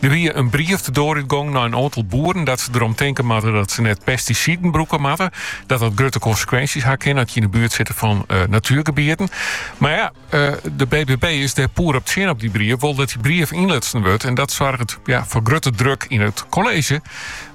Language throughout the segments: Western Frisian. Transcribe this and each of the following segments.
Der wie in brief de doar út gong nei in oantal boeren dat se derom tinke moatte dat se net pestisiden brûke moatte, dat dat grutte konsekwinsjes ha kinne as je yn de buert sitte fan natuergebieten. Mar ja, de BBB is dêr poer op tsjin op dy brief, wol dat dy brief ynlutsen wurdt en dat soarget foar grutte druk yn it kolleezje,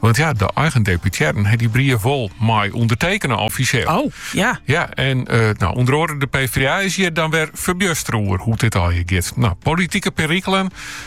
want ja, de eigen deputearren ha dy brief wol mei ûndertekene offisjeel. O, ja. Ja, en no ûnder oare de PvdA is hjir dan wer ferbjustere oer hoe't dit allegear giet. No, politike perikelen.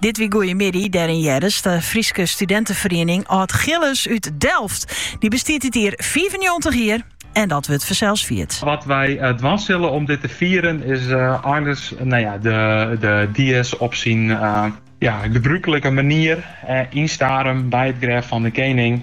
Dit wie Goeiemiddei, dêryn earst de Fryske studinteferiening Aldgillis út Delft. Dy bestiet dit jier fiifennjoggentich jier en dat wurdt fansels fierd. Wat wy dwaan sille om dit te fieren is earst de dies op syn gebrûklike manier, yn Starum, by it grêf fan de kening.